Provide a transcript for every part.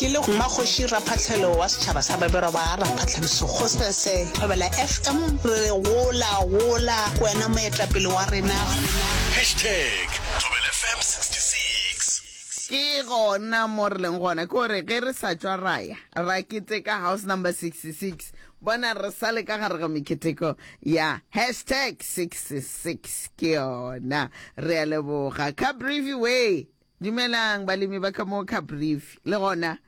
Ke le Mmakgoši Raphahlelo wa setšhaba sa Babirwa ba Raphahlediso Kgosese Thobela FM re re gola gola wena moetlapele wa rena. Hashtag Thobela FM 66. Ke gona mo re leng gona, ke gore ge re sa tšwa ra ya ra keteka house number 66, bona re sa le ka gare ga meketeko ya hashtag 66 ke yona. Re a leboga Cabrivi way Dumelang balemi ba ka mo Caprivi. Le gona,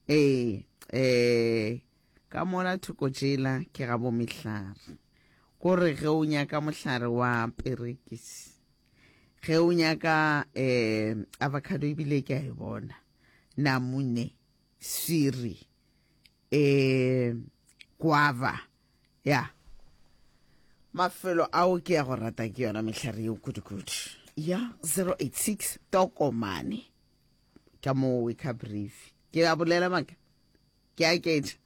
ee, ee, ka mola thoko tšela ke ga bomehlare. Ko re ge o nyaka mohlare wa perekisi, ge o nyaka ee, avocado ebile ke a e bona, namune, swiri, e kwava ya mafelo ao ke ya go rata ke yona mehlare yeo kudukudu ya 086 tokomane ka moo we ka brief ke a bolela maka ke a ketša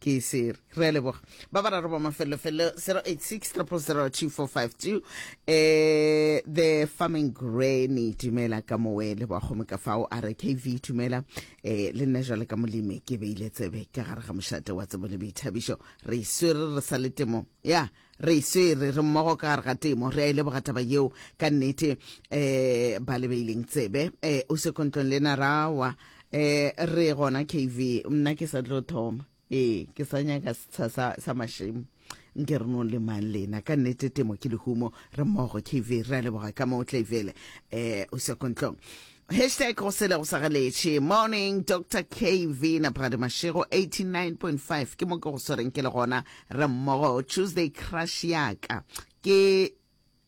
ke sere re leboga ba ba raro ba mafelelofele 0860002452 eh the farming granny dumela ka mowe le bagome ka fao a re kv dumela eh le nne jale ka molemi ke beile tsebe ka gare ga mošate wa tsebo le boithabišo re iswere re sa le temong ya re iswere re mmogo ka gare ga temo re a ile e bogataba yeo ka nnete eh ba le beileng tsebe eh o se kontlong le narawa eh re gona kv nna ke sa tlo thoma ee ke sa nyaka setsha sa, sa mašemo nke re no le mang lena ka nnete temo ke lehumo re mmogo kv re a leboga ka moo tlaivele um eh, o sekontlong hashtag go sele go sagaletše morning dr kv napagadi mašego 89.5 ke mo ke go swereng ke le gona re mmogo tuesday crush yaka ke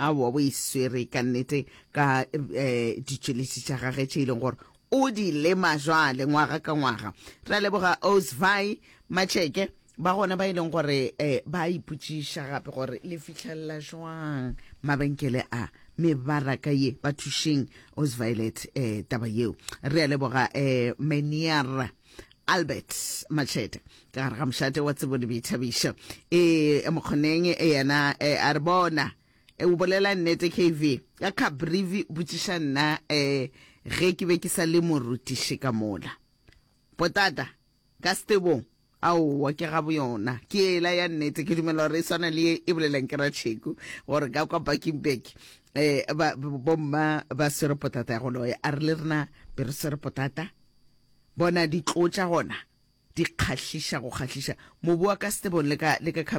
aowa o e swere ka nnete ka um ditšweletši tša gage tše e leng gore o di lema jwale ngwaga ka ngwaga ra leboga osvi matšheke ba gona ba e leng gore um ba ipotšiša gape gore le fitlhelela jwang mabenkele a mebaraka ye ba thušeng osvilet um taba yeo re a leboga um maniera Albert Machete ka gare ga mošate wa tsebo le boithabišo e mokgoneng e yena e a re bona e o bolela nnete KV ka Cabrivi botšiša nna e ge ke be ke sa le morutiši ka mola potata ka setebong aowa ke gabo yona ke ela ya nnete ke dumela gore e swana le e boleleng ke ratšheku gore ka kwa bakingberg um bomma ba swere potata ya go loya a re le rena be re swere potata Bona ditloo tša gona, di kgahliša go kgahliša! Mobu wa ka Stebone le ka, le ka Khaplone.